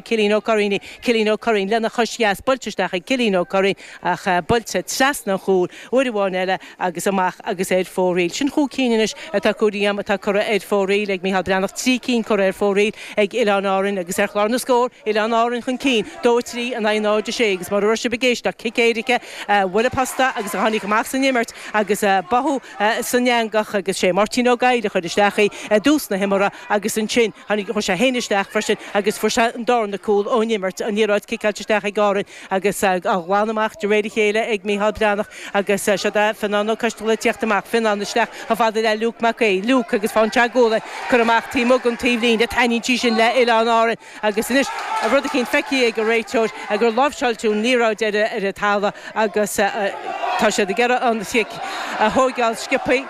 Cillín Ó Curraoin, Cillín Ó Curraoin lena chois dheas buailte isteach ag Cillín Ó Curraoin ach buailte trasna an chúil uair amháin eile agus amach agus ar fóraoil. Sin chúig cinn anois atá curtha díom atá curtha ar fóraoil ag Micheál Breathnach, trí cinn curtha ar fóraoil ag Oileáin Árainn agus ar chlár na scór, Oileáin Árainn chun cinn, dó a trí in aghaidh 0, 6 agus mura raibh sibh ag éisteacht, cic éirice a bhuail an posta agus a tháinig amach san imirt agus báthadh san eangach agus sé Máirtín Ó Goill a chuir isteach í i dtús na himeartha agus ansin Tháinig sé féin isteach freisin agus fuair sé an darna cúl ón imirt, an liathróid ciceáilte isteach ag Árainn agus á ghlanadh amach de réir a chéile ag Micheál Breathnach agus siod é Fionnán Ó Coistealbha ag teacht amach, Fionnán isteach chomh fada le Luke Mac Aoidh, Luke agus fonn teagmhála ag cur amach taobh amuigh den taobhlíne, taitníonn sí sin le Oileáin Árann agus anois rud eicínt feicthe ag an réiteoir gur láimhseáileadh an liathróid ar an talamh agus tá siad ag iarraidh an chic a thóigeáil sciopthaí.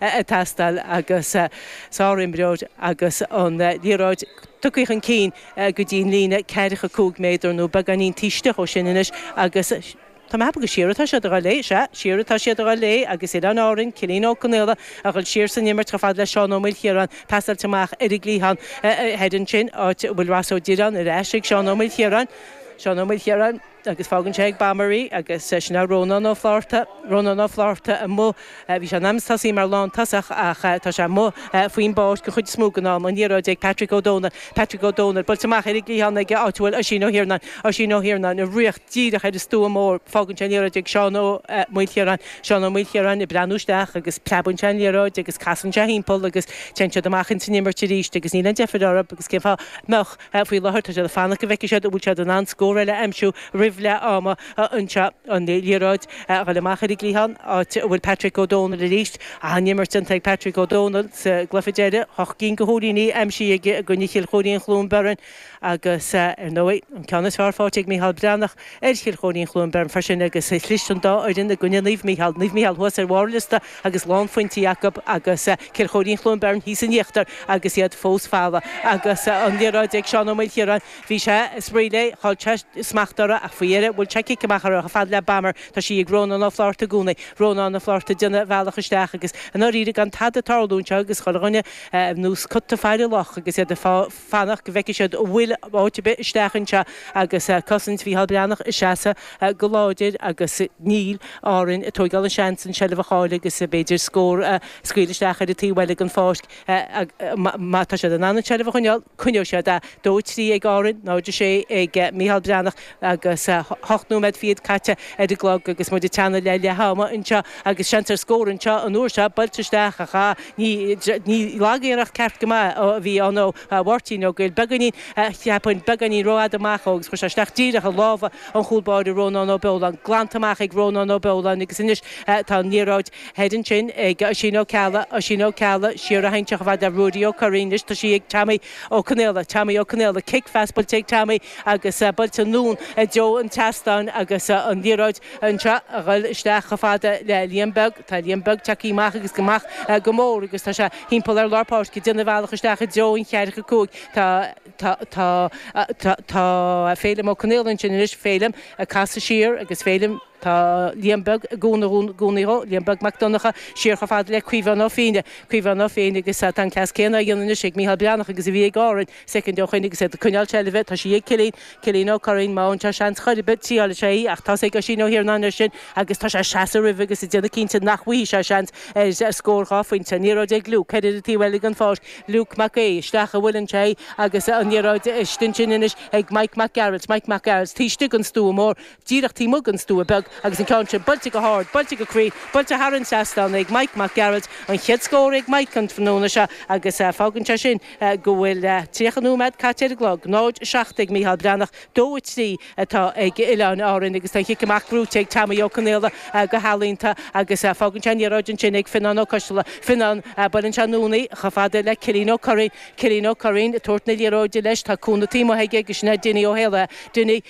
ag teastáil agus sárimreoir agus an liathróid tugtha chun cinn go dtí an líne ceathracha cúig méadar nó beagáinín taobh istigh ó sin anois agus tá mé ag ceapadh gur siar atá siad a dhul léi, sea, siar atá siad a dhul léi agus Oileáin Árann, Cillín Ó Conaola a dhul siar san imirt chomh fada le Seán Ó Maoilchiaráin pasáilte amach ar an gcliathán thoir ansin, áit a bhfuil Ross Ó Direáin ar ais ag Seán Ó Maoilchiaráin, Seán Ó Maoilchiaráin. agus fágann sé ag Bomber í agus sin é Rónán Ó Flaithearta. Rónán Ó Flaithearta amuigh, bhí sé in ainm is tosaí mar lántosach ach tá sé amuigh faoin bpáirc an chuid is mó den am, an liathróid ag Patrick Ó Dónaill, Patrick Ó Dónaill, buailte amach ar an gcliathán ag áit a bhfuil Oisín Ó hIarnáin, Oisín Ó hIarnáin, ag ritheacht díreach ar an stua mór, fágann sé an liathróid ag Seán Ó Maoilchiaráin, Seán Ó Maoilchiaráin ag breathnú isteach agus preabann sé an liathróid agus casann sé thimpeall agus téann siad amach ins an imirt arís agus níl aon deifir orthu agus cén fáth a mbeadh Faoi láthair, tá siad ag fanacht go bhfeicfidh siad an bhfuil siad in ann scór eile a aimsiú roimh leath ama anseo. An liathróid a dhul amach ar an gcliathán, áit a bhfuil Patrick Ó Dónaill arís. An-imirt déanta ag Patrick Ó Dónaill sa gcluiche deiridh, ocht gcinn de chúilíní aimsithe aige i gcoinne Chill Chóirín-Chluain Bheirn agus, ar ndóigh, an ceann is fearr faighte ag Micheál Breathnach ar Chill Chóirín-Chluain Bheirn freisin agus chlis an dá fhoireann i gcoinne Naomh Micheál. Naomh Micheál thuas ar bharr an liosta. agus lánphointí acu, agus Cill Chóirín-Chluain Bheirn thíos in íochtar agus iad fós folamh, agus an liathróid ag Seán Ó Maoilchiaráin, bhí sé ag spraoi léi, chaill sé smacht uirthi ach faoi dheireadh bhuail sé cic amach uirthi fad le Bomber, tá sí ag Rónán Ó Flátharta i gcónaí, Rónán Ó Flátharta déanamh a bhealach isteach agus i ndáiríre gan tada tarlú anseo agus chuile dhuine anois cut to fire lock agus iad ag fanacht go bhfeicfidh siad an bhfuil áit ar bith isteach anseo agus cosaint Mhícheáil Breathnach ag seasamh go láidir agus níl Árainn ag tóigeáil an seans an seilbh a chailleadh agus b'fhéidir scór a scaoileadh isteach ar an taobh eile den pháirc má tá siad in ann an seilbh a choinneáil coinneoidh siad í. 2-3 ag Árainn, 0-6 ag Mícheál Breathnach. agus hocht nóiméad fichead caite ar an gclog agus muid ag teannadh le leath ama anseo agus seans ar scór anseo an uair seo, buailte isteach ach ah ní lagiarracht, ceart go maith a bhí ann ó Mháirtín Ó Goill, beagáinín, cheapfainn, beagáinín rófhada amach ó agus chuir sé isteach díreach i lámha an chúl báire Rónán Ó Beoláin, glanta amach ag Rónán Ó Beoláin agus anois tá an liathróid thoir ansin ag Oisín Ó Ceallaigh, Oisín Ó Ceallaigh, siar a théann sí chomh fada le Ruairí Ó Curraoin, anois tá sí ag Teaimí Ó Conaola, Teaimí Ó Conaola, cic pas buailte ag Teaimí. agus buailte anonn i dtreo an tseastáin agus an liathróid anseo a ghoil isteach chomh fada le Liam Beag. Tá Liam Beag tagtha amach agus amach go mór agus tá sé thimpeall ar lár páirce ag déanamh a bhealach isteach i dtreo an cheathracha cúig. Tá tá tá tá tá Féilim Ó Conaola ansin anois. Féilim ag casadh siar agus Féilim tá Liam Beag i gcúnamh i gcónaí dhó. Liam Beag Mac Donnacha siar chomh fada le Caomhán Ó Féinne. Caomhán Ó Féinne agus tá an cleas céanna á dhéanamh anois ag Micheál Breathnach agus a bhí ag Árainn. soicind ó shoin agus iad ag coinneáil seilbhe, tá sí ag Cillín, Cillín Ó Curraoin, má fhaigheann sé seans chor ar bith triálfaidh sé í, ach tá's ag Oisín Ó hIarnáin air sin agus tá sé ag seasamh roimhe agus ag déanamh cinnte nach bhfaighidh sé seans ar scór dhá phointe. An liathróid ag Luke, ceithre ar an taobh eile den pháirc, Luke Mac Aoidh, isteach a bhuaileann sé í agus an liathróid istigh ansin anois ag Mike Mac Gearailt, Mike Mac Gearailt, taobh istigh den stua mór, díreach taobh amuigh den stua beag agus an ceann sin buailte go hard, buailte go cruinn, buailte thar an seastán ag Maidhc Mac Gearailt, an chéad scór ag Maidhc an tráthnóna seo agus fágann sé sin go bhfuil 30 nóiméad caite ar an gclog. 0, 7 ag Micheál Breathnach, 2, 3 atá ag Oileáin Árainn agus tá an chic amach buaite ag Teaimí Ó Conaola go healaíonta agus fágann sé an liathróid ansin ag Fionnán Ó Coistealla. Fionnán, buaileann sé anonn í chomh fada le Cillín Ó Curraoin. Cillín Ó Curraoin, ag tabhairt na liathróide leis, tá cúnamh taobh amuigh aige agus sin é Dinny Ó hÉalaithe. Dinny.